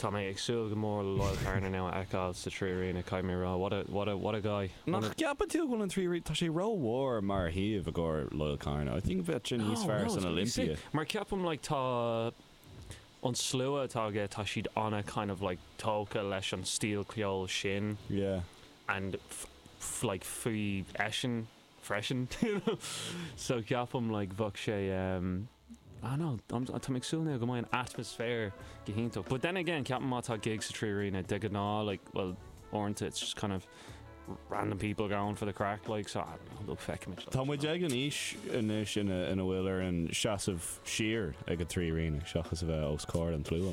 Tá mé ag súil go mór le Loyle Carner now a fheiceáil sa 3Arena, caithfidh mé a rá. What a, what a, what a guy. Nach gceapann tú go bhfuil an 3Arena, tá sé ró-mhór mar shuíomh i gcomhair Loyle Carner. I think bheadh sé níos No, fearr no, san it's gonna be Olympia. sick. Mar ceapaim, like, tá an slua atá aige, tá siad ana, kind of like, tógtha leis an stíl ceoil sin. Yeah. And f, like, faoi eisean freisin, you know. So ceapaim, like, bheadh sé. I don't know, I'm tá mé ag súil now go mbeidh an atmaisféar go hiontach. But then again, ceapaim má tá gig sa 3Arena, de ghnáth, like, well, uaireanta it's just kind of random people going for the crack, like, so I don't know, look, feicfimid, like, Tá muid ag an aois anois ina, ina bhfuil orainn seasamh siar ag an 3Arena seachas a bheith os comhair an tslua,